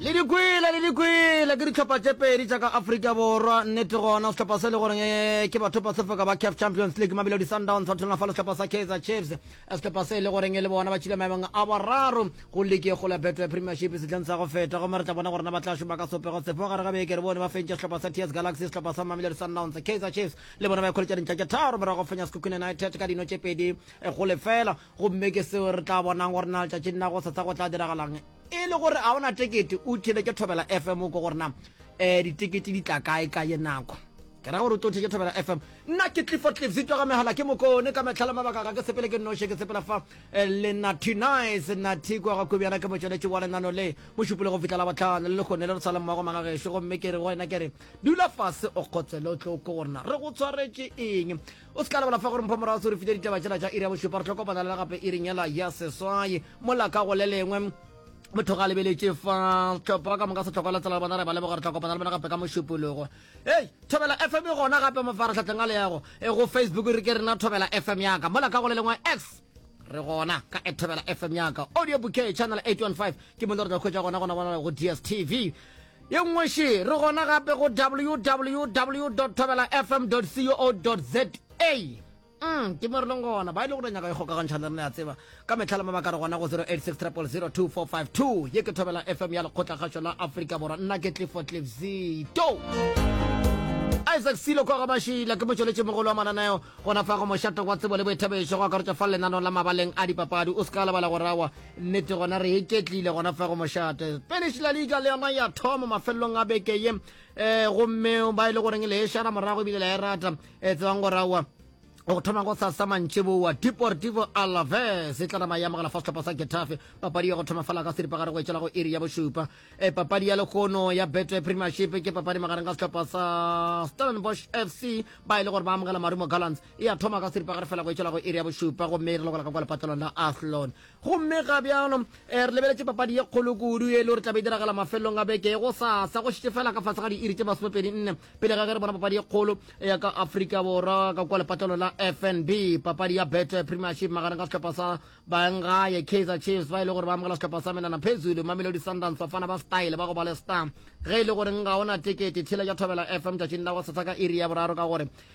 Le di kwele, le di kwele, ke dihlopha tše pedi tša ka Afrika Borwa. Nnete gona, sehlopha se le goreng eh, ke bathopa se foka ba CAF Champions League, Mamelodi Sundowns ba thulana fa le sehlopha sa Kaizer Chiefs. Eh, sehlopha se le goreng e le bona ba tšhile maemong a boraro go leke go la Betway Premiership sehleng sa go feta. Gomme re tla bona gore na ba tla šoma ka sopego sefe gare ga beke. Re bone ba fentše sehlopha sa TS Galaxy, sehlopha sa Mamelodi Sundowns. Kaizer Chiefs le bona ba ikholetša dintlha tše tharo morago go fenya Sekhukhune United ka dino tše pedi eh, go lefela. Gomme ke seo re tla bonang gore na letšatšing la go setsha go tla diragalang. E le gore a o na tekete, o theletše Thobela FM o ko gore na um ditekete di tla kae ka ye nako. Ke ra gore o tlo theletše Thobela FM. Nna ke Clifford Cliff Zitwa ga megala ke mokone ka metlha le mabaka ga ke sepele ke nnoše ke sepela fa eh, le Natty Nice Natty kwa ga kobjana ke motšweletše wa lenano le mo šupole go fihla la botlhano le lekgone le re tshwaleng mmago maga gešo gomme ke re go wena ke re dula fase o kgotsele o tlo ko gorena re go tshwaretše eng o se ka lebala fa gore mpho morago se re file ditaba tsela tša iri ya bošupa re tlo kopana le gape iri nyela ya seswai mola ka go le lengwe motho ga lebeletše fa tlhopho wa ka moka setlhokwa la tsela le bona re ba leboga re tla kopana le bona gape ka mošupologo ei thobela fm gona gape mafaratlhatlheng a leyago e go facebook re ke rena thobela fm yaka mola ka go le lengwe x re gona ka ethobela fm yaka audio bouquet channel 815 ke mo le re tla khwetša gona gona gona go dstv Ye nngwe še, re gona gape go www.thobelafm.co.za. Umm, ke mo re leng gona. Ba ile go tla nyaka ikgokagantšha le rena, ya tseba. Ka mehla le mabaka re gona go 0860002452. Ye ke Thobela FM ya Lekgotlakgašo la Afrika Borwa. Nna ke Clifford Cliff Zito. Isaac Silo kwa Gabashila ke motšweletši mogolo wa mananeo gona fa go mošato wa tsebo le boithabišo go akaretša fa lenanong la mabaleng a dipapadi o se ka lebala go rawa Nnete gona re iketlile gona fa go mošate. Spanish La Liga le yona ya thoma mafelelong a beke ye um gomme ba e le goreng le e šara morago ebile la e rata um tsebang gore aowa go thoma go sasa mantši boa deportivo alaves e tla nama ya mogala fa setlhopha sa getafe papadi ya go thoma fela ka seripagare go etšela go iri ya bošupa e papadi ya lekgono ya betway premiership ke papadi magareng ka setlhopha sa stellenbosch fc ba e le gore ba amogela marumo gallants e a thoma ka seripagare fela go etšwela go iri ya bošupa gomme e re lokola ka kwa lepatelong la athlon gomme ga bjalo um re lebeletše papadi ye kgolo kudu e le gore tlabe e diragala mafelelong a beke go sasa go šitše fela ka fase ga diiri tše masomepedi nne pele ga ge re bona papadi ye kgolo ya ka afrika borwa ka kwa lepatelong la fnb papadi ya bet premiership magareng ka sehlopha sa bangaye kaizer chiefs ba e le gore ba amogela sehlopha sa menana phezulu mamelodi sundance bafana ba style ba go ba le star ge e le gore nka ona tekete tshela ja thobela fm tšatšing la go sasa ka iri ya boraro ka gore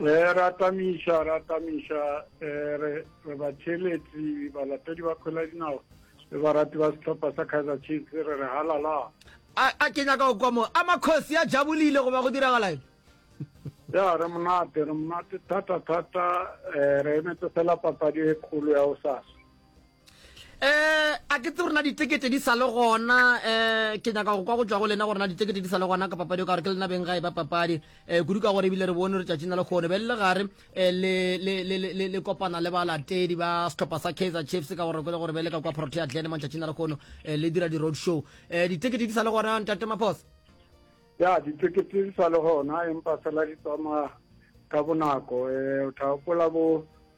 Eh, ra tamiša ra tamiša eh, re re batheletsi balatedi ba kgwela dinao le barati ba setlhopha sa kaizer chiefs re re halala a a ke nyaka go kwa mo a makgosi a jabolile goba go diragalaeng ya re monate re monate thata thata eh, re emetse fela papadi e kgolo ya o sasa Eh, a ke tse rona ditekete di sale gona eh ke nyaka go kwa go tswa go lena go rona ditekete di sale gona ka papadi ka gore ke lena beng ga e ba papadi eh kudu ka gore ebile re bone re tšatši na le kgone be le gare eh, le le le le le kopana le balatedi ba setlhopha sa Kaizer Chiefs ka gore ke le gore be le ka kwa Protea Glen mo tšatši na le kgone eh, le dira di road show eh ditekete di sale gona ntate Maphosa ya ditekete di sale gona empa fela di tsamaya ka bonako eh o tla gopola bo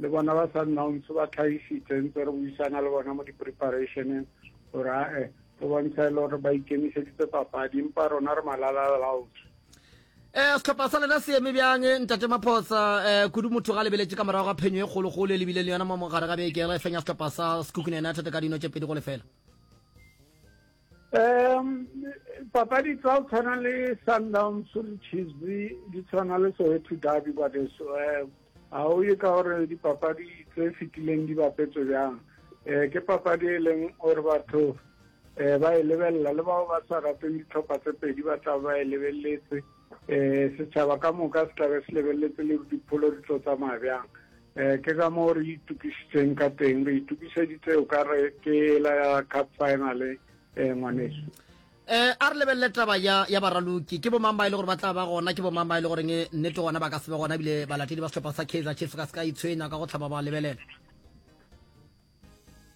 Le bona ba Sundowns ba tlhagišitše ntse re buisana le bona mo di-preparationeng gore ae go bontsha e le gore ba ikemišeditse papadi empa rona re malalalalaotswe um setlhopha sa lena se eme bjang eh, ntate maphosa um kudu motho ga lebeletše ka morago ga phenyo e kgologolo e lebile le yona mo mogare ga beke re fenya setlhopha sa sekukune united ka dino tše pedi go lefela um papadi tsa go tshwana le sundowns le chiefs di tshwana le soweto derby kwadeso um eh, ga o ye ka gore dipapadi tse fetileng di bapetswe bjang um ke papadi e leng gore batho um ba e lebelela le bao ba sa rateng ditlhopha tse pedi ba tla ba e lebeletse um setšhaba ka moka se tlabe se lebeletse le dipholo di tlo tsamaya bjang Ee, ke ka moo re itokišitšeng ka teng. Re itokišeditse o ka re ke ela ya cup final, eh, ngwaneso. Eh, a re lebelele taba ya, ya baraloki. Ke bomang ba e le gore ba tla ba gona? Ke bomang ba e le goreng eh, nnete gona ba ka se be gona ebile balatedi ba sehlopha sa Kaizer Chiefs ka se ka itshwenya ka go hlaba ba lebelela?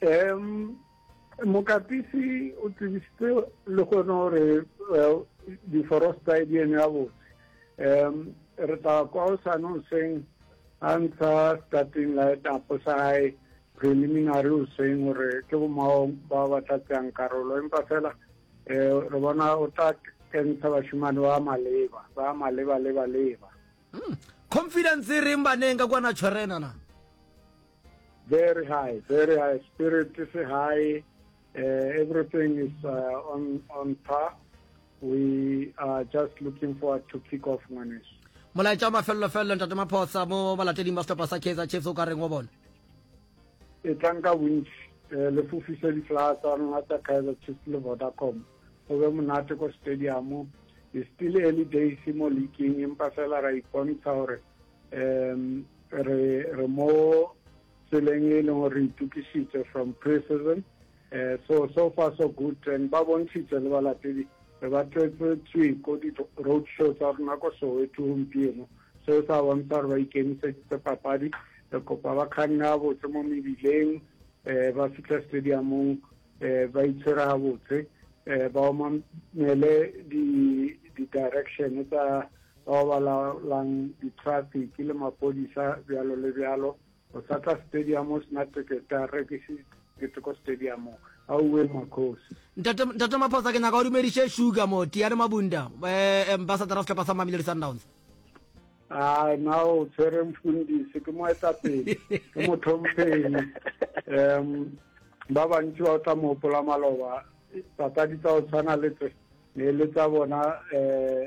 um mokapisi o tsebisitse le gone gore eh, diforosta e di eme gabotse um re tla kwa o sane o seng a ntsha starting light apo sa gae preliminary o seng gore ke bomao ba ba tla tseyang karolo empa fela um re bona o tla kentsha bashimane ba maleba ba maleba leba leba hmm. confidence e reng baneng ka kwana tshwerena na Very high, very high. Spirit is high. Uh, everything is uh, on, on par. We are just looking forward to kick off Ngwanesh. molaetša wa mafelelo felelo ntate maphosa mo balateding ba setlhopha sa kaizer chiefs o ka reng wa bona e tlang ka bontši um le fofise ditlaa tsa rona tsa kaizer chiefs le vodacom go be monate ko stadium e still early days mo leaking empa fela ra ipontsha gore um re re mo tseleng e leng gore itukišitše from pre-season um so so far so good and ba bontšhitše le balatedi re ba tletse tswiko di-road show tsa rona ko soweto gompieno seo sa bontsha gore ba ikemiseditse papadi re kopa ba kganne gabotse mo mebileng um ba fitlha stadiumong um ba itshwere gabotse um ba omamele di-direction tsa bao ba laolang ditrafiki le mapodisa bjalo le bjalo, go sa tla stadium o sena tekete a rekise tekete ko stadium auwe makgosi. Ntate ntate Maphosa ke nyaka o dumediše Sugar mo Tiane Mabunda eh ambassador of sehlopha sa Mamelodi Sundowns. Ah na o tshwere mfundisi ke moetapele ke motlhompheng um ba bantši ba o tla mo gopola maloba papadi tsa go tshwana le tse ne le tsa bona um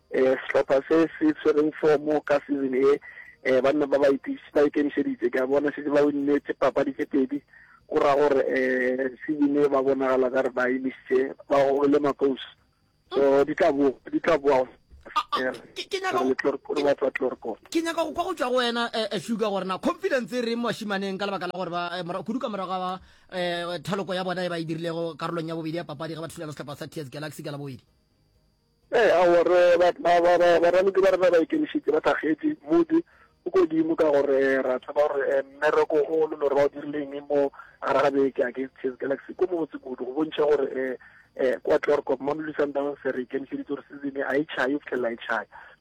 Eh, sehlopha se se tshwereng fomo ka season e eh, banna ba ba itiš- ba ikemišeditse ke a bona šetse ba winne tše papadi tše pedi go ra gore eh, season e ba bonagala ka re ba imišitše ba gogile makous so di tla boa di tla boa Ah, ah, eh, ke- ke nyaka re go- le Tlor- ke- re ba tswa Tlorkor ke nyaka go kwa go tšwa go wena eh, eh, sugar gore na confidence e reng bashimaneng ka lebaka la gore ba eh, mora- kudu ka morago ga um thaloko ya bona e ba e dirilego karolong ya bobedi ya papadi ge ba thulana sehlopha sa tears galaxy ka la bobedi Ee, aowa, re, ba, ba, ba, ba, baraloki ba rena ba ikemišetše, ba thakgetše, Modi o Kodimo, ka gore ra tseba gore eh, mmereko o lo lore ba o dirile eng mo gare ga beke against Chase Galaxy ko mobotse kudu, go bontšha gore eh, eh, kwa Klerkop, Mamelodi Sundowns re ikemišeditše gore season e a e tšhaye go fihlelela e tšhaya.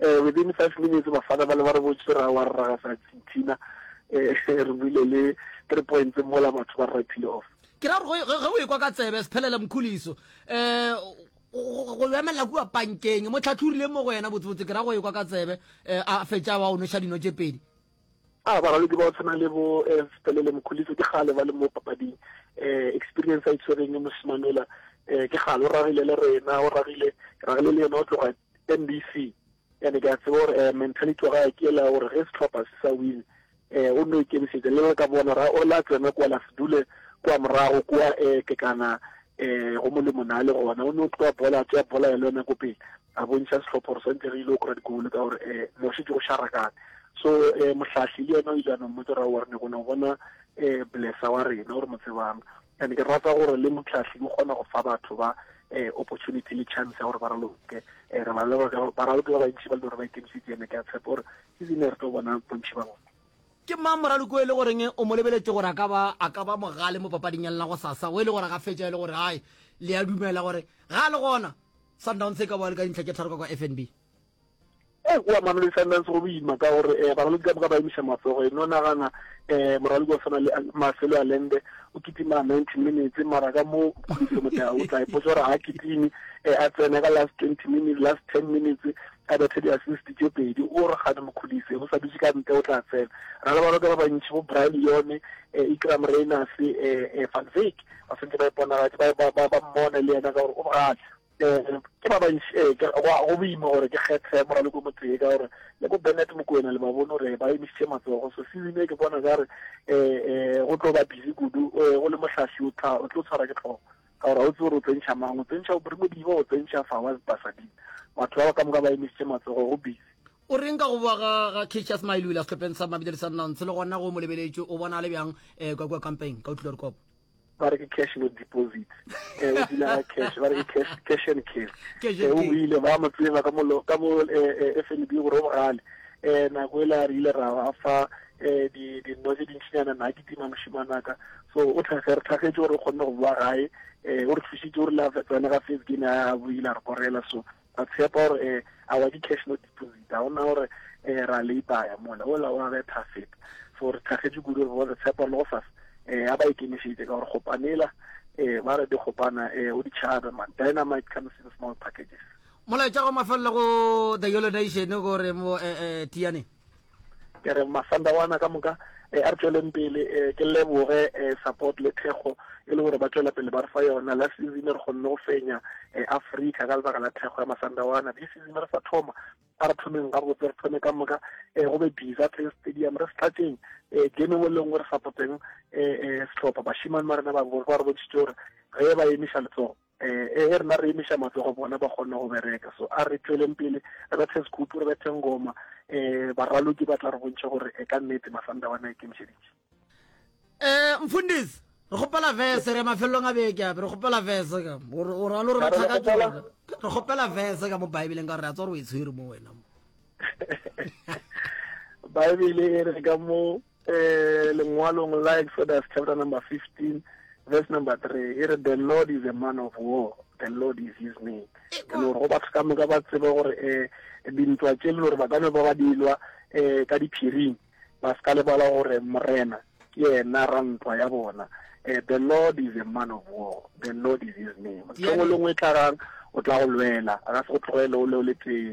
Within five minutes bafana bale ba re botše ra wa rraga sa Argentina re buile le three points mola batho ba re pile off. Ke ra gore ge o ekwa ka tsebe Sphelele Mkhuliso go go emelela kua pankeng mo tlhatlhorile mo go yena botsebotse ke ra go ekwa ka tsebe a fetša wa o noša dino tše pedi. A baralodi ba go tshwana le bo Sphelele Mkhuliso ke kgale ba le mo papading experience a itshwereng mošemanola ke kgale o ragile le rena o ragile ke ragile le yena o tloga mbc and ke a tseba gore um mentality wa gae ke ela gore ge setlhopha se sa win um o nno ikemišetša le le ka bona ra o la tsena kwa la se dule kwa morago kwa um ke kana um go molemo na le gona o ne o tloa bola tšea bola ya le yona ko pele a bontšha setlhopha gore swantse re ile o kora digolo ka gore um mo šetse go šarakane so um mohlahli le yena o ile a no mmotsa ra warne gona bona um blessa wa rena gore mo tsebang And ke rata gore le Motlhahli ke kgona go fa batho ba eh, opportunity le chance ya gore ba raloke eh, re ba leba ka ba raloke ba bantši ba le gore ba ikemišitse ene ke a tshepa gore ke zine re tlo bona bontši ba bona ke mang moraloki o e le goreng o mo lebeletse gore a ka ba a ka ba mogale mo papading ya lena go sasa o e le gore ga fetša e le gore gae le ya dumela gore ga le gona sundowns e ka boa le ka dintlha tše tharo ka kwa fnb e kua mamelodi sundance go boima ka gore um baralodi ka moka ba emiša matsogo e no nagana um moralodi wa tshwana le maselo a lende o kitima ninety minutes mara ka mo kgodiso motea o tla ipotsa gore ga kitime um a tsena ka last twenty minutes last ten minutes a bethe di-assist tše pedi o re gane mokgodise o sa dutse ka ntle o tla tsena ra le baloka ba bantšhi bo brian yone um ikram rainers um van vake ba swantse ba iponagatse ba mmone le yena ka gore o bogale Ke ba bantši, ee, ke, go, go boima gore ke kgethe moraloko motee, ka gore le bo Bennett Mokoena le ba bone gore ba emišitše matsogo. So season ye ke bona ka re um go tlo ba busy kudu, um o le mohlahli o tla, o tlo tshwara ke tlhogo, ka gore ga o tsebe gore o tsentšha mang, o tsentšha Aubrey Modiba, o tsentšha Fawaz Basading. Batho ba ba ka moka ba emišitše matsogo, go busy. O reng ka go bowa ga ga Cassius Mailula sehlopheng sa Mamelodi Sundowns, le gona go mo lebeletšwe, o bona a le bjang um kwa kua Kampeng ka Otlhilorikopo? ba re ke cash no deposit eh o dula ka cash ba re ke cash cash and cash eh o ile ba mo tseba ka molo ka bo eh, eh, FNB go ro bogale eh nako ela re ile ra ba fa eh di di no di ntshana na ke tima moshimanaka so o tlhage re tlhagetše gore o kgonne go bua gae eh o re thusitse o re la tsena ga face game a buile re korela so Ba tshepa gore eh, awa ke cash no deposit, ga ona gore eh, ra leipaya mola, ola wa betha feta. So re tlhagetše kudu re bone tshepo le go sasa, eh, a ba ikemišeditše ka gore gopanela, eh, ba re di gopana, eh, o di tšhabe man, dynamite comes in small packages. Molaetša go mafelelo go The Yolo Nation gore mo eh, eh, Tiane. Ke re masanda wana ka moka eh, a re tšweleng pele eh, ke leboge eh, support le thekgo e le gore ba tšwela pele ba re fa yona la season re kgonne go fenya eh, africa ka lebaka la thekgo ya masanda wana di season re sa thoma a re thomeng ga botse re thome ka moka eh, go be bisa tse stadium re setlatseng eh, game engwe le nngwe re supporteng eh, eh, setlhopha bashimane ba rena ba re bontšhitse gore ge ba emiša letsogo e ge rena re emiša matsogo bona ba kgone go bereka so a re tšweleng pele re bethe sekhupu re bethe ngoma um baraloki ba tla re bontšha gore e ka nnete masanda bona a ikemišeditše um mfundisi re kgopela vese re mafelelong a beke ape re kgopela vese ka o ralo re batla ka tsona re kgopela vese ka mo baebeleng ka gore a tswa gore o e tshwere mo wena mo baebele e re ka mo Eh, lengwalong la Exodus chapter number 15 verse number 3 e re the Lord is a man of war the Lord is his name and gore go batho ka moka ba tsebe gore eh dintwa tše le gore ba ka no ba ba dilwa eh ka diphiring ba se ka lebala gore morena ke yena rantwa ya bona eh the Lord is a man of war the Lord is his name tlhogo lengwe e tlagang o tla go lwela a ka se go tlogele o le o le tee